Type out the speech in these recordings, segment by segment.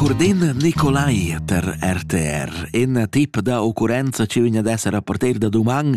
Cordin Nicolai per RTR. In tip da occurrenza che vegn ad essere rapporter da doman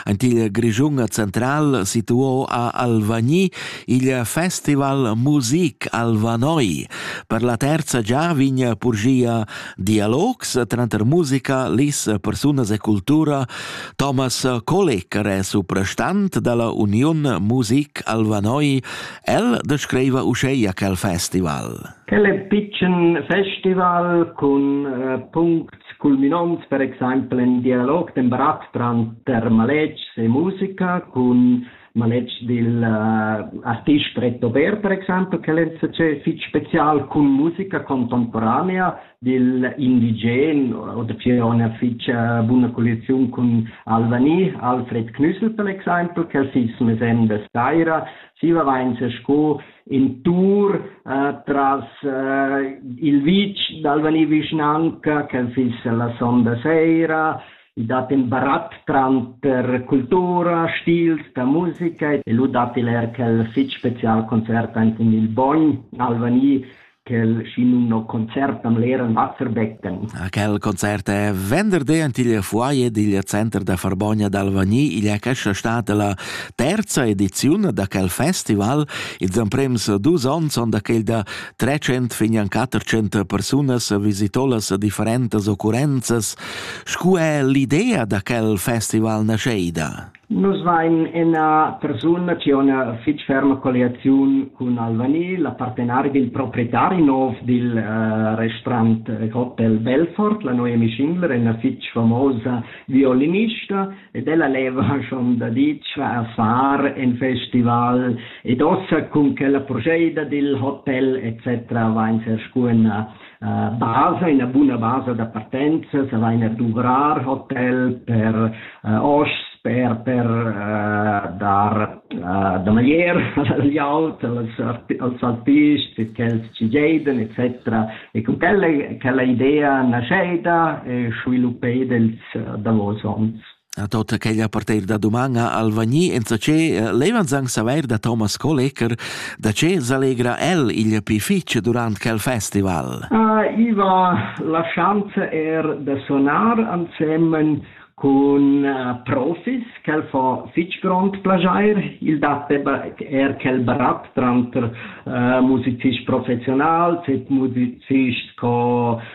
en il Grischun central situò a Alvagni il festival Musik Alvanoi. Per la terza già vegn purgia dialogs tranter musica, lis, personas e cultura. Thomas Kolek, resuprestant dalla Union Musik Alvanoi, El descriva uscheia quel festival. El è pitschen festival cun uh, puncts culminonts, per exempel in dialog den barat tranter maletgs e musica, cun maletgs dil uh, artist Pretto Ber, per exempel, che l'NCC fitg special cun musica contemporanea dil indigen oder che ha una fitg uh, buona collezione con Albany, Alfred Knüssel per exempel, che il Sisme Sende Steira, Siva vainsa sco in tour eh, tras eh, il vitg d'Alvani vischnanca che fiss la sonda sera, i dat in barat tranter cultura, stils da musica e lu dat il er quel fitg special concert in il Bogn Alvani quel schinumno concert am leran Wasser becken. Quel concert è venderdi in il foyer digl center da Farbogna d'Alvagni. Igl è questa stata la terza edizione da quel festival. Ils emprems dus onns son da quel da 300 fin an 400 personas visitolas differentas occurrenzas. Scu è l'idea da quel festival nascheida? Nus vain ina persuna chi ho üna fich ferma colliaziun cun Albany, l'appartenari del proprietari nov del restaurant Hotel Belfort, la noua mi Schingler, üna fich famosa violinista, ed ella leva schon daditg far in festival ed ossa cun quella proceda del hotel et cetera vain ser scu üna basa, ina buna basa da partenza, savaina duvrar hotel per uh, hosps, per, per uh, dar uh, da maglier agli aut, als, als altists, quels ci geiden, etc. E con quella, quella idea nasceda e sviluppeda ils uh, davos onns. A tota quella parteir da duman ha Alvagni enzatgé levans anc savair da Thomas Kolecker da che s'allegra el igl pi fitg durant quel festival. I va la schanza er da sonar ansemen cun profis quel fa fitg grond plagiair il dat er quel barat tranter uh, musicists professionals e musicists co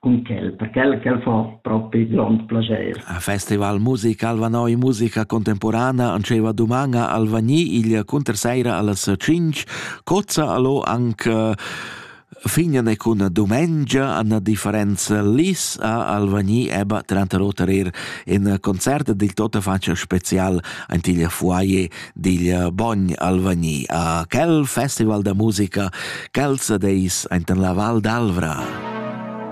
cun quel, per quel ch'el fa propi grond plaschair. A festival musica Alvanoi musica contemporana antscheva dumanga Alvagni igl cunterseira allas 5, cozza allo anche Fignane cun dumengia an differenz lis a Alvagni eba trenta rotarer in concert dil tota faccia special antiglia fuaie digl Bogn Alvagni a quel festival da musica quels deis enten la Val d'Alvra.